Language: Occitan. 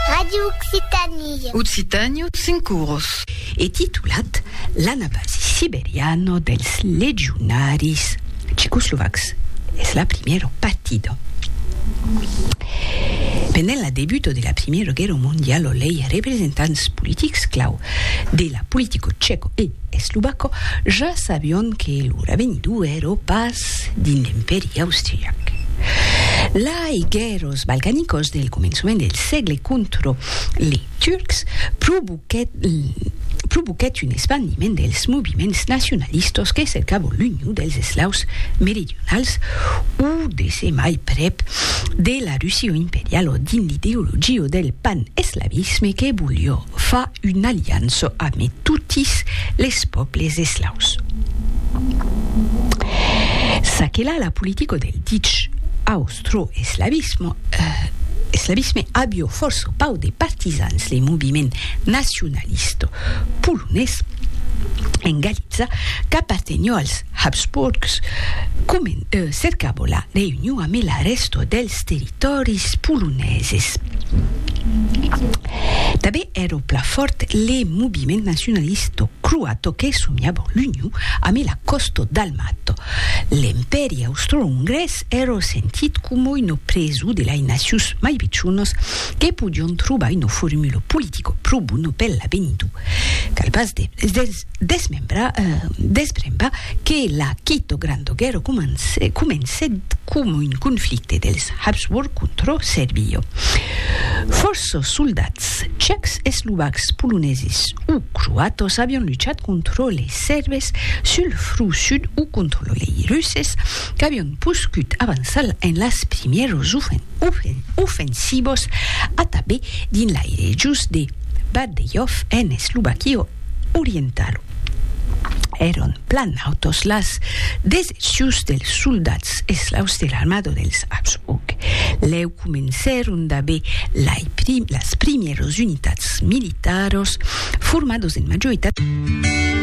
Radio Occitanie. Occitània, cinc coros. E titulat L'anabasi siberiano dels legionaris checoslovacs, es la primièra partida. Pendent la debuta de la Primièra Guèrra Mondiala lei representants politics clau de la politica chèca e eslovaca ja sabián que lor avenidor èra pas dins l'Empèri austriac. La Ai guèrros balcanicos del començament del sègle contra li Turcs provoquèt un espandiment dels moviments nacionalistas que cercavan l'union dels eslaus meridionals o de se mai prèp de la Russia imperiala dins l'ideologia del pan-eslavisme que voliá Fa una aliança ame totis les pòbles eslaus. Ça que la la politica del dich austroeslavisme, eslavisme avió fòrça pauc de partisans le moviment nacionalista polonés en Galiza qu'apartenió als Habsburgs, comen cercabo la reünion ame la rèsto dels territòris poloneses. Tanben ero pla fòrt le moviment nacionalisto croato que somiabo l'union ame la còsto dalmato. L'Empèri austro-ongrés ero sentit como uno preso de lai nacius mai pichonos que podion trobar uno formulo politico pro bono per l'avenir. Cal pas de Desmembra, despremba, que la quito grandoguero comence, comencèt coma un conflicte dels Habsburg contra Serbio. Fòrça soldats tchècs, eslovacs, poloneses o croatos avián luchat contra lei Serbes sul fru sud o contra lei Russes qu'avián poscut avançar en las primièros ofensivos a tabé dins lei rejos de Bardejov en Eslovaquia orientalo. Èron plan autos las decepcions dels soldats eslaus de l'armada dels Habsburg. Lèu comencèron d'aver lai las primièras unitats militaras, formadas en majoritat.